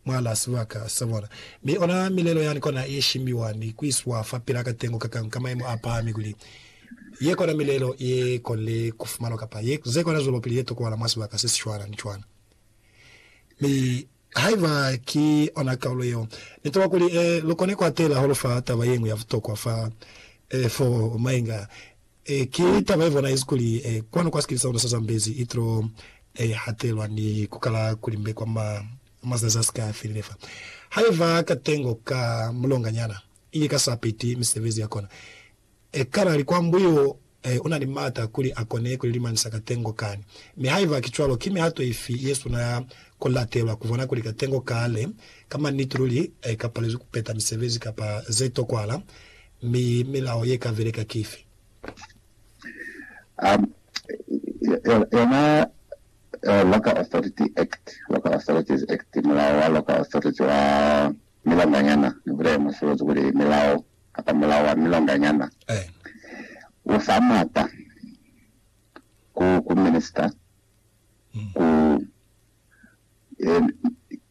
mwalaa sibaka sa bona, mi ona milelo yani kona ye shimbiwa ni kuiswa fa pila katengo kakang ka maemo a pahami kuli ye kona milelo ye konile kufumanwa kapa ye ze kona zwelopili ye tokohala mwa sibaka se sicwana ni cwana. Mi haiba ki ona kaulo yeo, Ni toba kuli e lukone kuatela holo fa taba yeñwi ya butokwa fa e foo mainga Ki taba ye bonaezi kuli kwanu kwa sikili sa luna sa Zambezi i tilo hatelwa ni ku kala ku limbe kwa mazazi a si ka felile fa ha i ba katengo ka mulonganyana, ili ka sa peti misebezi ya kona. Kanali kwa mbu yo u na ni maata kuli a kone ku lilimanisa katengo kani. Mi haiba ki cwalo, ki mihato ifi ye suna ya ku latelwa ku bona kuli katengo kale ka maniti luli ka palezwi ku peta misebezi kapa ze tokwahala? mi milao ye ka beleka ki ifi? Um, yona uh, Local Authority Act, Local Authorities Act, mulao wa Local Authority wa milonganyana, ni bulele musolozi kuli milao kapa mulao wa milonganyana, eh. u fa mata ku, ku minister mm. ku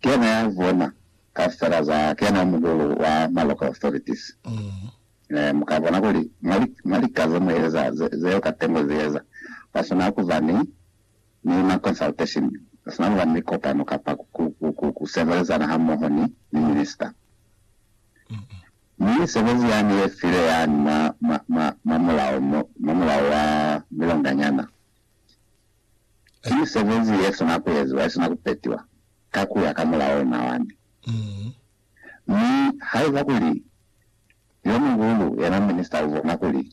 kena ya bona kaufela za kena muhulu wa ma local authorities muka bona kuli mwa lika ze mu eza zeo katengo zi eza kwa suna kuba ni ni ma consultation kwa suna kuba ni mikopano kapa ku sebelezana ha moho ni ni minister mi sebezi yani ye file yani mwa mwa mwa mwa mulao mwa mulao wa milonganyana Ki misebezi yesina kueziwa, yesina kupetiwa ka kuya ka mulao ona wani. Mi haiba kuli yomuhulu, yena minista, ubona kuli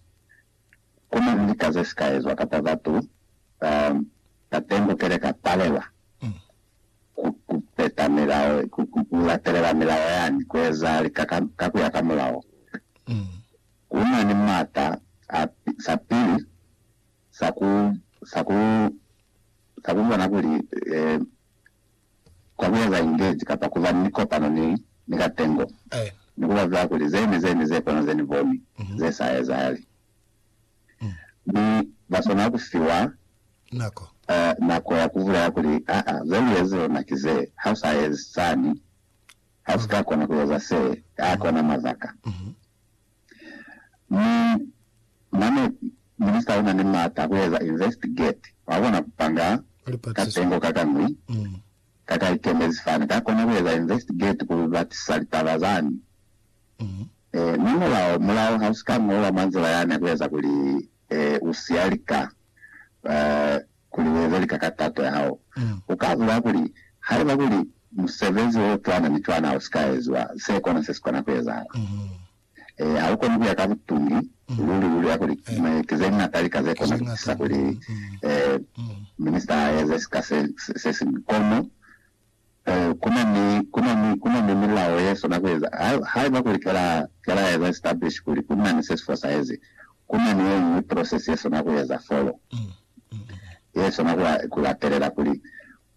kuna ni lika zesika ezwa kapa batu bateng ku keleka palelwa kupeta milao, kulatelela milao yani, kueza lika ka kuya ka mulao, kunani mata a sapili sa ku, sa ku, sa ku bona kuli e kwa ku eza ingeji kapa ku ba ni kopano ni, ni katengo, ni ku babela kuli ze ne, ze ne ze kono ze Ni boni ze sa ezahali. Mi ba swanela ku fiwa nako, eh, nako ya ku bulela kuli, Aa, ze lu ezi lona ki ze, ha u sa ezi sani, ha u si ka kona ku eza se, a kona mabaka. Mi mane Minista una ni maata a kueza investigate, wa kona kupanga katengo kakañwi kakaikemezi fani kakona kueza investigate kubatisa litaba zani. Mi mulao, mulao hausi ka ñolwa mwa nzila yani ya kueza kuli usiya lika. kuli ueze lika ka tato yahao. Uka bulaya kuli, Haiba kuli musebezi o cwana ni cwana usika eziwa, se kona sesikona kuezahala. Eya, haukoni kuya ka butungi luli luli ya kuli ki zeñata lika zekona kutisa kuli minista aeze sika sesiñwi. Kono Kuna ni milao ye sona kueza haiba kuli kela eza establish kuli kuna ni se si fosahezi. Kuna ni yeñwi process ye sona kueza folo ye sona ku latelela kuli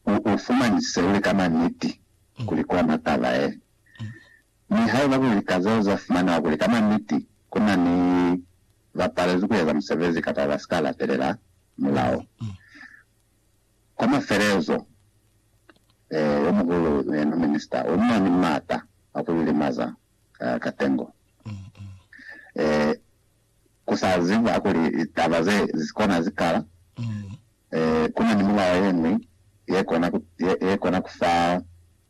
u fumanisise uli ka maniti kuli kona taba ye. Mi haiba kuli lika zeo za fumanewa kuli ka maniti kuna ni ba palezwi kueza musebezi kapa ba sika latelela mulao, Kwa mafelezo, ee, yo muhulu ne no minista o na ni m'ata a ku lilimaza ka tengo. Ee, ku sa ziba kuli litaba ze zi kona zi kala, ee, ku na ni mulao ye ñwi ye kona ku, ye, ye kona ku fa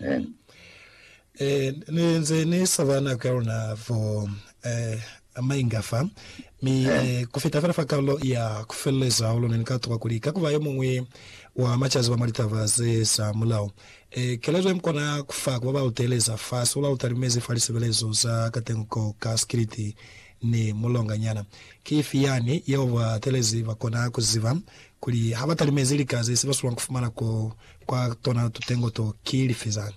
Amen. Eh, ni nze ni sabana ka luna for eh, mainga fa mi eh, ku feta fela fa karolo ya ku feleleza ulo ne ni ka tuka kuli ka kuba yo mungwi wa macazi ba mwa litaba ze za mulao eh, kelezo ye mukona ku fa ku ba ba lu teeleza fa se u la lu talimezi fa lisebelezo za katengo ko ka sikiliti ni mulonganyana ki ifi yani yeo ba telezi ba kona ku ziba kuli ha ba talimezi lika ze si ba sulwa ku fumana ko kwa tona tutengo to, ki lifi zani?